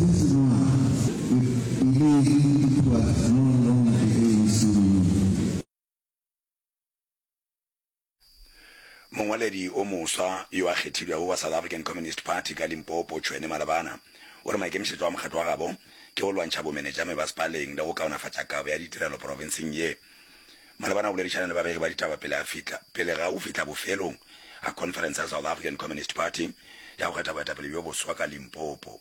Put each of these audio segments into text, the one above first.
Since noon we believe it was no longer the ANC we knew. Mongwaledi o moswa yo a kgethilwego wa South African Communist Party ka Limpopo, Tshwene Malabana, o re maikemišetšo a mokgatlo wa gabo ke go lwantšha bomenetšame ba Spaleng le go kaonafatša kabo ya ditirelo profenseng ye. Malabana o boledišana le babegi ba ditaba pele a fihla pele ga go fihla bofelong ga conference ya South African Communist Party ya go kgetha boetapele bjo boswa ka Limpopo.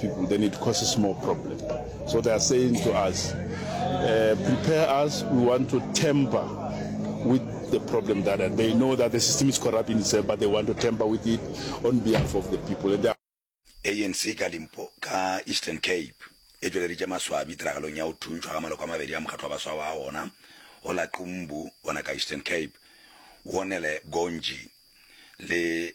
people then it causes more problem so they are saying to us uh, prepare us we want to temper with the problem that and they know that the system is corrupt in itself but they want to temper with it on behalf of the people and are... anc ka limpo ka eastern cape e tšweleditše maswabi tiragalong ya go thuntšhwa ga maloko a mabedi ya mokgatlo wa baswa wa ona go la qumbu ona ka eastern cape wonele gonji le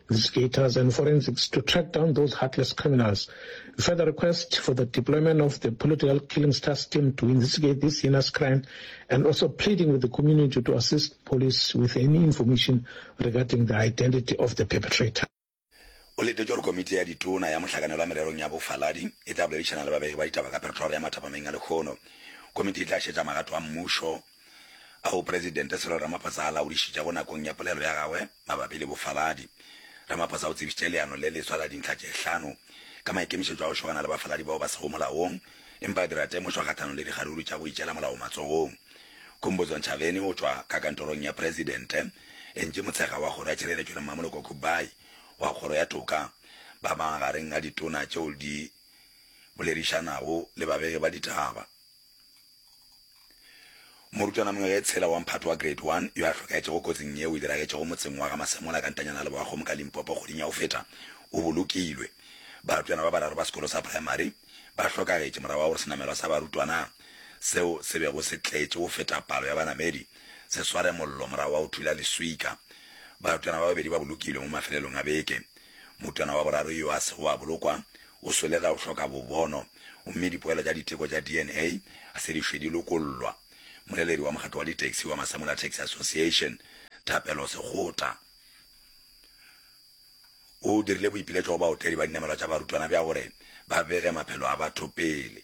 investigators and forensics to track down those heartless criminals. We further request for the deployment of the political killings task team to investigate this heinous crime and also pleading with the community to assist police with any information regarding the identity of the perpetrator. O letetše gore komiti ya ditona ya mohlakanelwa mererong ya bofaladi e tla boledišana le babegi ba ditaba ka peretoire ya mathapameng a lekgono. Komiti e tla šetša magato a mmušo A o Presidente Cyril Ramaphosa a laodišitšego nakong ya polelo ya gagwe mabapi le bofaladi, Ramaphosa o tsebišitše leano le leswa la dintlha tše hlano ka maikemišetšo a go šogana le bafaladi bao ba sego molaong empa a dira temošo kgahlanong le dikgaruru tša go itšela molao matsogong. Khumbudzo Ntshavheni o tšwa ka kantorong ya Presidente, Angie Motshekga wa Kgoro ya Tšhireletšo le Mmamoloko Kubayi wa Kgoro ya Toka ba magareng a ditona tšeo di boledišanago le babegi ba ditaba. Morutwana mongwe yo e tshela wa mphato wa Grade One yo a hlokaetšego kotsing yeo e diragetšego motseng wa ga Masemola ka ntanyana ya Leboakgomo ka Limpopo kgweding ya go feta o bolokilwe. Barutwana ba bararo ba sekolo sa praemari ba hlokagetše morago ga gore senamelwa sa barutwana seo se bego se tletše go feta palo ya banamedi se sware mollo morago ga go thula leswika. Barutwana ba babedi ba bolokilwe mo mafelelong a beke. Motwana wa boraro yo a sego a bolokwa o swele ka go hloka bobono gomme dipoelo tša diteko tša DNA ga se di šwe di lokollwa. Moleledi wa mokgatlo wa ditaxi wa Masamula Taxi Association, Thapelo Sekgota, o dirile boipiletšo go baotledi ba dinamelwa tša barutwana bja gore ba bege maphelo a batho pele.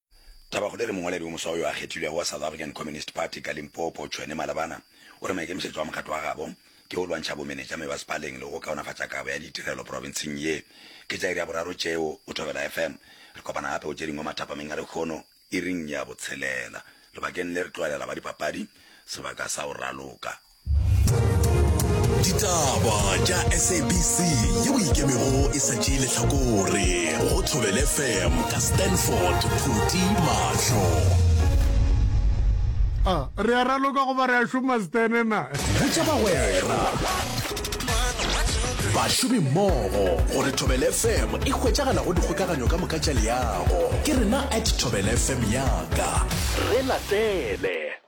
Tabakgolo e re mongwaledi wo moswa yo a kgethilwego wa South African Communist Party ka Limpopo, Tshwene Malabana, o re maikemišetšo a mokgatlo wa gabo ke go lwantšha bomenetša mebasepaleng le go kaonafatša kabo ya ditirelo profenseng ye. Ke tša iri ya boraro tšeo o Thobela FM. Re kopana gape go tše dingwe mathapameng a lekgono iring ya botshelela lebakeng le re tloelela ba dipapadi sebaka sa go raloka. ditaba tša sabc yeo ikemego e sa tšee letlhakore go thobele fm ka stanford phuti mahlo a re a raloka go ba re a šoma stene na botša bagwera bašomi mmogo gore thobele fm e hwetšagala go dikgokaganyo ka moka tša leago ke rena at thobele fm yaka re latele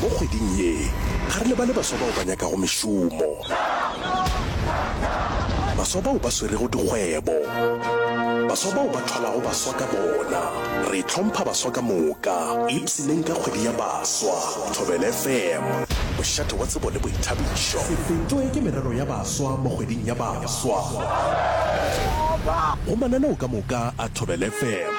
Mo kgweding ye, ga re lebale baswa bao ba nyakago mešomo, baswa bao ba swerego dikgwebo, baswa bao ba thwalago baswa ka bona. Re hlompha baswa ka moka. Ipshineng ka kgwedi ya baswa. Thobela FM, mošate wa tsebo le boithabišo. Se fetwe ke merero ya baswa mo kgweding ya baswa. Go mananeo ka moka a Thobela FM.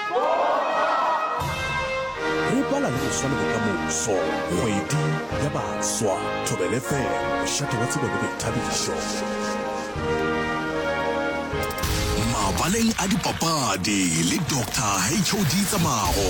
Re bala le go swale bokamoso, kgwedi ya baswa, Thobel FM, mošate wa tsebo le boithabišo. Mabaleng a dipapadi le Doctor HOD Tsamago.